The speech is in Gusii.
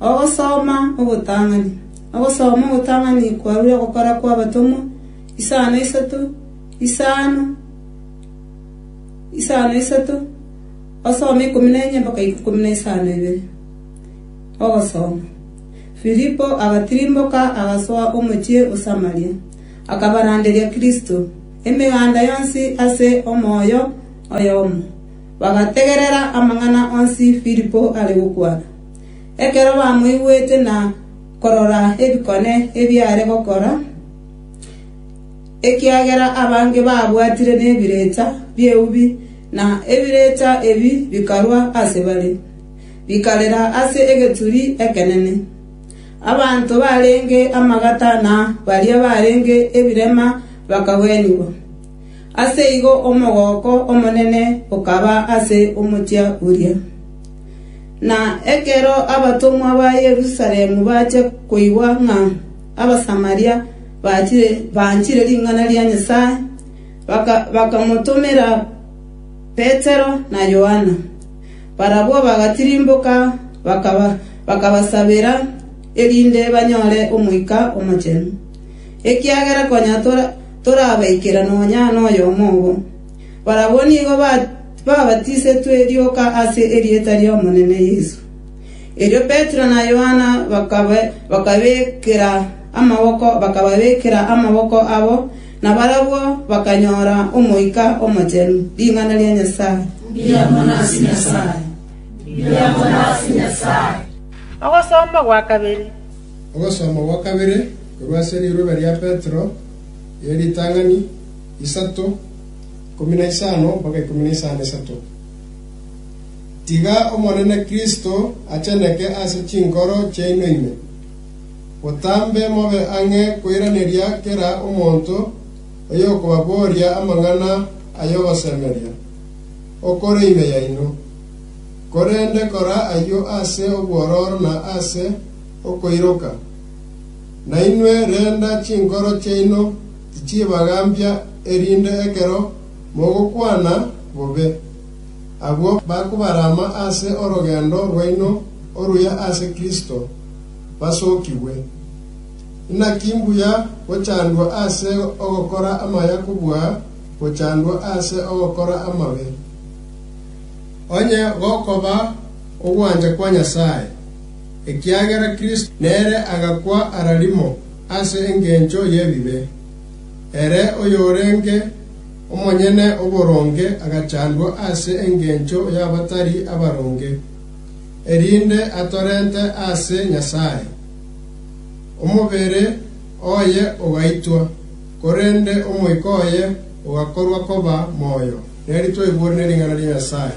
Ogosoma ogotang'ani. Ogosoma ogotang'ani kwarure ogokora kw'abatomwa, isano isato, isano, isano isato, osome ikomi na enye mpaka ikomi na isano ibere. Ogosoma. Filipo agatirimboka agasoa omochie o Samaria, akabaranderia Kristo, emeganda yonsi ase omoyo oyomo. Bagategerera amang'ana onsi Filipo are gokwana. Ekero bamoigwete na korora ebikone ebiare gokora, ekiagera abange baabwatire nebirecha bi'eubi, na ebirecha ebi bikarwa ase bare, bikarera ase egeturi ekenene. Abanto barenge amagata na baria barenge ebirema bakagwenigwa. Ase igo omogooko omonene okaba ase omochie oria. Na ekero abatomwa ba Yerusalemu bachia koigwa ng'a Abasamaria bachire banchire ring'ana ria Nyasae, bakamotomera Petero na Yohana. Barabwo bagatirimboka, bakabasabera, erinde banyore Omoika Omochenu, ekiagera konya torabaikera nonya noyomo obo. Barabwo nigo babatisetwe rioka ase erieta ri'Omonene Yeso. Erio Petero na Yohana bakababekera amaboko abo, na barabwo bakanyora Omoika Omochenu. Ring'ana ria Nyasae. Ogosoma gwa kabere korwa ase riroba ria Petero ye ritang'ani, isato, ikomi na isano mpaka ikomi na isano isato. Tiga Omonene Kristo acheneke ase chinkoro chiaino ime, botambe mobe ang'e koiraneria kera omonto oyokobaboria amang'ana ay'ogosemeria, okore ime yaino, korende kora ayio ase obwororo na ase okoiroka. Nainwe renda chinkoro chiaino tichibagambia erinde ekero mogokwana bobe, abwo bakobarama ase orogendo rwaino oruya ase Kristo, basokigwe. Inaki mbuya gochandwa ase ogokora amaya kobua gochandwa ase ogokora amabe, onye gokoba ogwancha kwa Nyasae! ekiagera Kristo nere agakwa ara rimo ase engencho y'ebibe. Ere oyorenge omonyene oboronge agachandwa ase engencho y'abatari abaronge, erinde atorente ase Nyasae. Omobere oye ogaitwa, korende omoika oye ogakorwa koba moyo. Neri twaigwore ne ring'ana ria Nyasae.